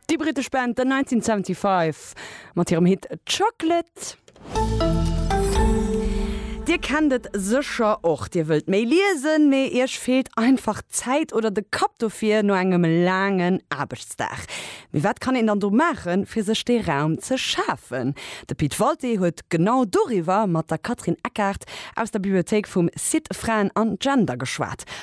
Déi brittesch Band The 1975 mat hirem Hit Chocolate. Dir kennt et sécher och, Dir wëllt méi liesen, mee Iech feelt einfach d'Zäit oder de Kapp dofir no engem laangen Aarbechtsdag. Mee wat kann een dann do maachen, fir sech dee Raum ze schafen? De Pit Walté huet genau doriwwer mat der Catherine Eckart aus der Bibliothéik vum Site Fraen an Gender geschwat.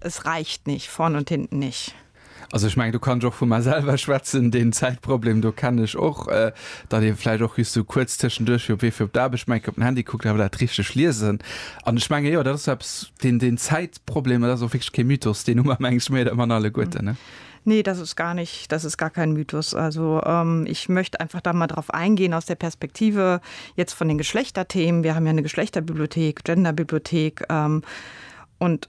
Es reicht nicht, vorn und hinten nicht. Also ech mengen do kann ech och vu mer selwer schwätzen, deen Zäitproblem do kennen ech och, datt ee vläicht och just esou kuerz tëschenduerch fir op Wee fir op d'Aarbecht mengt op den Handy kuckt, awer dat richteg liesen an ech menge jo dat ass eppes, deen deen Zäitproblem dat ass och wierklech kee Mythos, deen hu mer menge ech méi oder manner alleguerten ne? Nee, das ist gar nicht, das ist gar kein Mythos. Also ähm, ich möchte einfach da mal drauf eingehen aus der Perspektive jetzt von den Geschlechterthemen. Wir haben ja eine Geschlechterbibliothek, Genderbibliothek ähm, und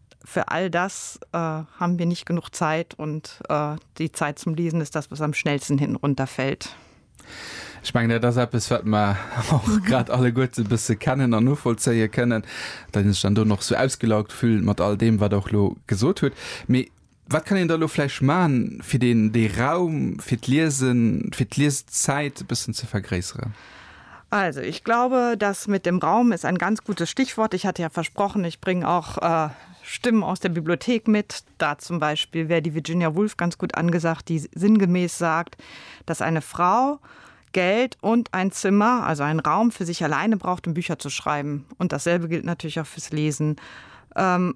Für all das haben wir nicht genug Zeit und die Zeit zum Lesen ist das, was am schnellsten hinten runterfällt. Ech mengen, dat ass eppes, wat mer och grad alleguerte bësse kennen an novollzéie kënnen, well een sech dann do nach esou ausgelaugt fillt mat all deem, wat Der och elo gesot hutt. Wat kann een da elo vläicht maachen, fir deen, dee Raum fir d'Liesen, fir d'Lieszäit e bëssen ze vergréisseren? Also, ich glaube, das mit dem Raum ist ein ganz gutes Stichwort. Ich hatte ja versprochen, ich bringe auch Stimmen aus der Bibliothek mit. Da zum Beispiel wäre die Virginia Woolf ganz gut angesagt, die sinngemäß sagt, dass eine Frau Geld und ein Zimmer, also einen Raum für sich alleine braucht, um Bücher zu schreiben. Und dasselbe gilt natürlich auch fürs Lesen. Ähm,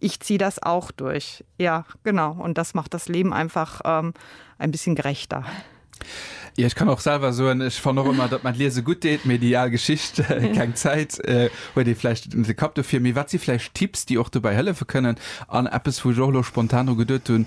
Ich zieh das auch durch. Ja, genau. Und das macht das Leben einfach ähm, ein bisschen gerechter. Ja, ich kann auch selber so ich fand auch immer dat man lese gut deet mir die all Geschicht äh, keng Zeit äh, huet dir vielleicht de Kap dofir mir wat sie vielleicht Tipps die auch dabei helfe können an Apps wo Jolo spontan geduet hun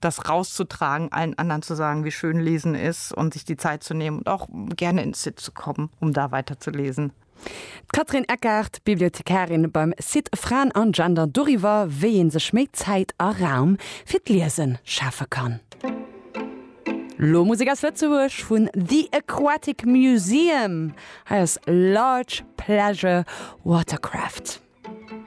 das rauszutragen, allen anderen zu sagen, wie schön lesen ist und sich die Zeit zu nehmen und auch gerne ins Site zu kommen, um da weiter zu lesen. D'Catherine Eckart, Bibliothekarin beim Site Fraen an Gender doriwwer, wéi ee sech méi Zäit a Raum fir d'Liesen schafe kann. Lo Musek aus Lëtzebuerg vun The Aquatic Museum. Hei ass Large Pleasure Watercraft.